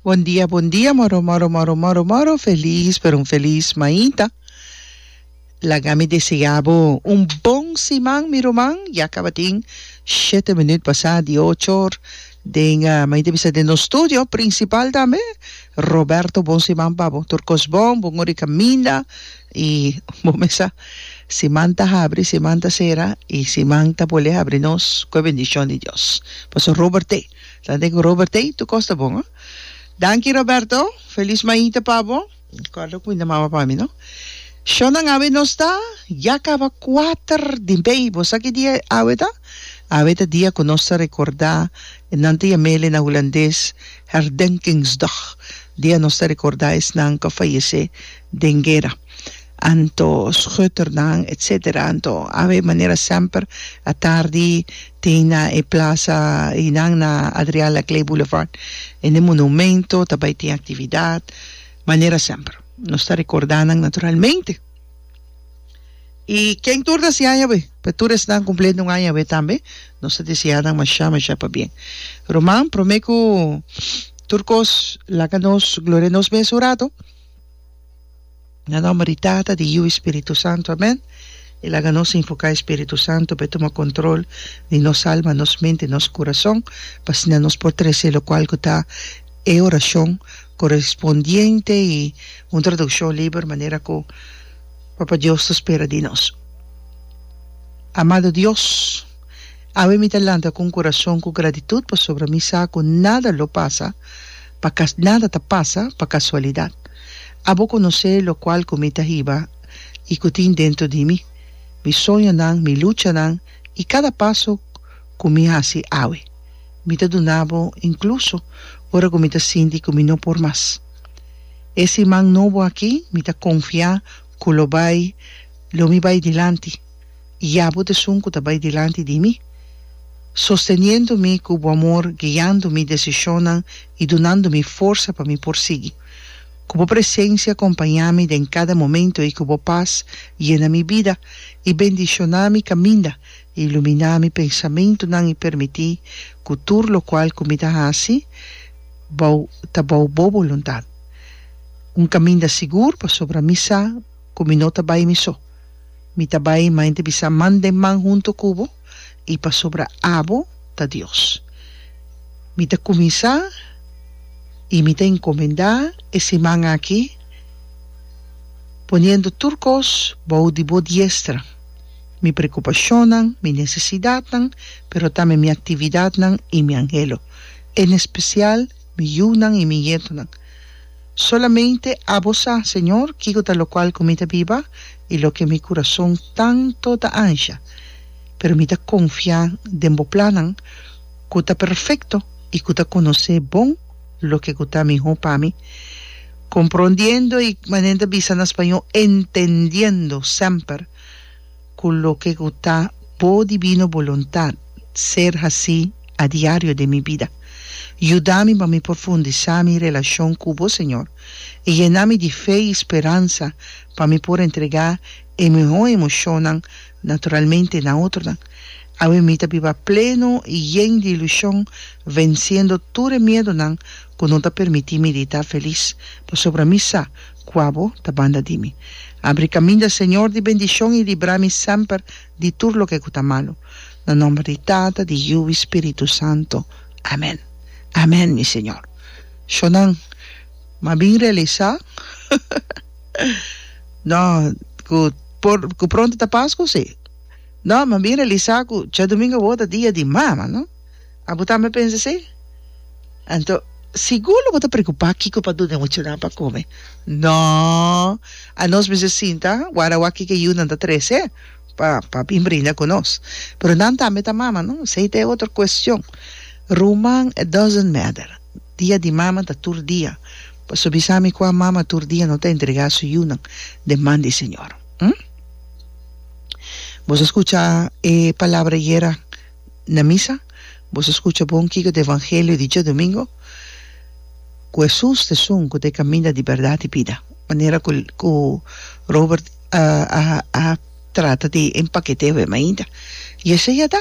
Bon dia bon dia moro moro moro moro moro feliz pero un feliz mainta laga mi desea bo un bon siman mi ruman ya cabatin shete minut basa di ocho or den mainta bisa den nos studio principal tambe Roberto bon siman pa bo tur cos bon bon ora di caminda I bo mesa siman ta habri siman ta sera i siman ta bolé habri nos ku e bendishon di Dios paso Robert'é ta den ku Robert'é tur kos ta bon a danki Roberto felis maita pa bo korda ku mi ta mama pa mi no shon nan awe nos ta ya kaba kuater di mei bo sa ki dia awe ta awe ta dia ku nos ta rekorda nan ta yam'el na hulandes herdenkingsdag dia nos ta rekorda esnan ku a fayesé. den guera anto schutternan etc anto ave manera semper a tardi tin na e plaza einan na Adriaan Laclée Boulevard en e monumento ta bay tin actividad manera semper nos ta recorda nan naturalmente y ken tur ta siaña be pa tur esnan cumpleaños un aña awe tambe nos ta desea nan masha masha pabien Roman prome cu tur cos laga nos gloria nos mes un rato. Na nomber di Tata, di Yiu i Spiritu Santu, amèn. E laga nos invoká e Spiritu Santu pa e tuma kontrol di nos alma, nos mente i nos kurason, pa asina nos por trese lokual ku ta e orashon korespondiente i un tradukshon liber manera ku Papa Dios ta spera di nos. Amado Dios, awe mi ta lanta ku un kurason ku gratitut pasobra mi sa ku nada lo pasa. Pa cas nada ta pasa pa casualidad. Abo conoce locual cu mi ta hiba y cu tin dentro di mi, mi soñonan, mi luchanan y cada paso cu mi haci awe. Mi ta dunabo incluso ora cu mi ta sinti cu mi no por mas. E siman nobo aki mi ta confia cu lo bay lo mi bay dilanti. Ya bo desun ku ta bai dilanti di mi, sosteniendo mi ku bo amor, guiando mi desishonnan i dunando mi forsa pa mi por sigui. Ku bo presensia kompañá mi den kada momentu i ku bo pas yena mi bida i bendishoná mi kaminda, iluminá mi pensamentunan i permití ku tur lokual ku mi ta hasi bou ta bou bo boluntat. Un kaminda sigur pasobra mi sa ku mi no ta bai mi so. Mi ta bai mainta bisa man den man huntu ku bo, i pasobra abo ta Dios. Mi ta kuminsá i mi ta enkomendá e siman aki, poniendo tur kos bou di bo diestra, mi prekupashonnan, mi nesesidatnan, pero tambe mi aktividatnan i mi anhelo, en espesial mi yunan i mi ñetonan. Solamente Abo sa, Señor, kico ta locual cu mi ta biba y loke mi curazon tanto ta ansha. Pero mi ta confia den Bo plannan cu ta perfecto y cu ta conoce bon loke cu ta miho pa mi. Comprondiendo y, manera nan ta bisa na Spaño, entendiendo semper. cu loke cu ta Bo divino boluntad ser haci a diario den mi bida. Yuda mi pa mi profundisa mi relacion cu Bo, Señor, y yena mi di fe y speransa pa mi por entrega e miho emocionnan naturalmente na otronan. Awe mi ta biba pleno y yen di ilusion, venciendo tur e miedonan cu no ta permiti mi di ta feliz, pasobra mi sa Kua bo ta banda di mi. Abri kaminda, Señor, di bendishon i libra mi semper di tur loke ku ta malu. Na nòmber di Tata, di Yiu i Spiritu Santu. Amen. Amen, mi Señor. Shonnan, mi a bin realisá no ku por ku pronto ta Pasku, si. No, mi a bin realisá ku djadumingu awor ta dia di mama, no. Abo tambe pensa esei? Anto sigur lo bo ta preocupa kico pa dun'e muchanan pa come. No! A nos mester sinta wara wak kico e yiunan ta trece pa pa bin brinda cu nos. Pero nan tambe ta mama, no? Esei ta e otro cuestion. Ruman, it doesn't matter. Dia di mama ta tur dia. Pasobra bisa mi cua mama tur dia no ta entrega su yiunan den man di e Señor. Hm? Boso a scucha e palabra ayer a? na misa, boso skucha bon kiko ta e evangelio di djadomingo, ku Hesus ta esun ku ta e kaminda di bèrdat i bida. Manera ku ku Robert a a a trata di empakete awema ainda. I esei a ta,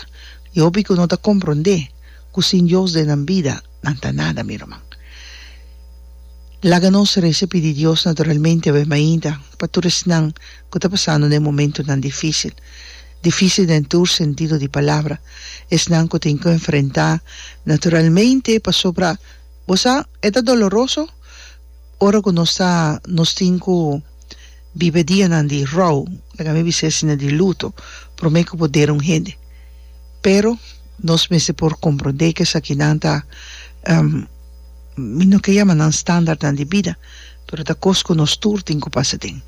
e hopi ku no ta komprondé ku sin Dios den nan bida nan ta nada, mi ruman. Laga nos resa i pidi Dios naturalmente awema ainda pa tur esnan ku ta pasando den momentunan difísil. Difícil den tur sentido di palabra. Esnan cu tin cu enfrentá naturalmente pasobra bo sa e ta doloroso ora cu nos ta nos tin cu biba dianan di rouw, laga mi bis'e asina di luto, prome cu bo dera un hende. Pero nos mester por comprende cu esakinan ta mi no ke yama nan standaardnan di bida pero ta cos cu nos tur tin cu pasa den.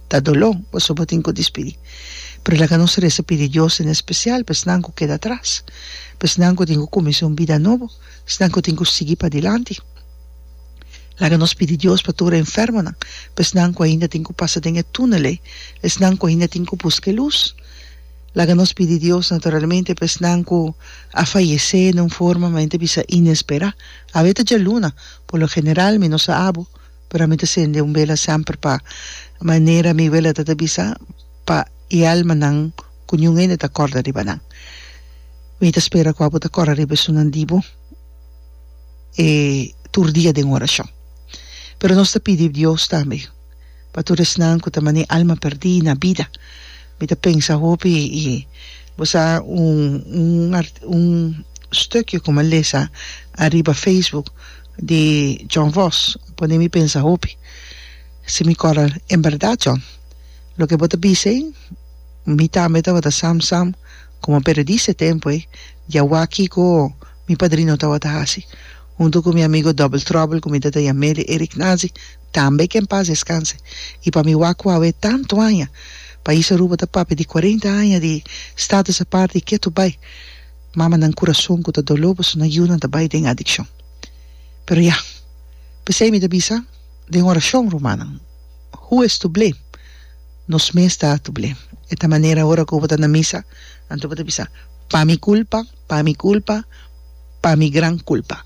ta doló pasobra bo tin cu dispidí. Pero laga nos reza pidi Dios en especial pa esnan cu keda atras, pa esnan cu tin cu cuminsá un bida nobo, esnan cu tin cu sigui padilanti. Laga nos pidi Dios pa tur e enfermonan, pa esnan cu ainda tin cu pasa den e túnel ei, esnan cu ainda tin cu busca e luz. Laga nos pidi Dios naturalmente pa esnan cu a fayecé den un forma manera ta bisa inesperá. Awe ta djaluna, por lo general mi nos a abo Pero ami ta sende un bela semper pa manera mi weleta ta bisa pa e almanan ku niun hende ta kòrda riba nan. Mi ta spera ku abo ta kòrda riba esunnan di bo e tur dia den orashon. Pero nos ta pidi Dios tambe pa tur esnan ku ta manee alma pèrdí na bida. Mi ta pensa hopi i bo sa un un un stukio ku mi a lesa ariba facebook, di John Voss pone mi pensa hopi si mi cor al en berdad John loke bo ta bisa ei mi tambe tabata sam sam como periodista e tempo ei di a wak kico mi padrino tabata haci hunto cu mi amigo Double Trouble cu mi ta ta yameli Eric Nazi tambe que en paz descanse y pa mi wak cu awe tanto aña pais Aruba ta papia di cuarenta aña di status aparte y ketu bay. Mamanan kurason ku ta doló pasobra nan yunan ta bai den adikshon. Pero ya, p'esei mi ta bisa den orashon, rumannan, Who is to blame? Nos mes ta to blame. E ta manera ora ku bo ta na misa, anto bo ta bisa, Pa mi kulpa, pa mi kulpa, pa mi gran kulpa.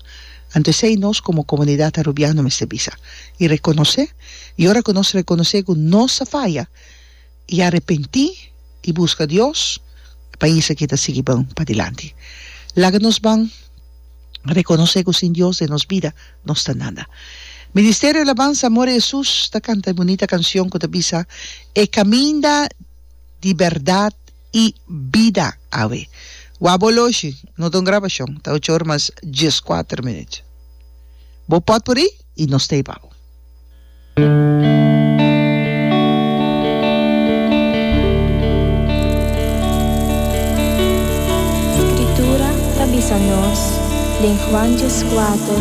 Anto esei nos komo komunidat Arubiano mester bisa i rekonosé. I ora ku nos rekonosé ku nos a faya. y arepenti y busca Dios e pais aki ta sigui bon padilanti. Laga nos ban reconoce cu sin Dios den nos bida nos ta nada. Ministerio Alabanza Amor a Jesus ta canta e bunita cancion cu ta bisa E caminda di berdad y bida awe wou bo loshi no ta un grabacion ta ocho ora mas diescuater minut bo pot puri y nos ta ibabo. Skritura ta bisa nos den Juanches kuater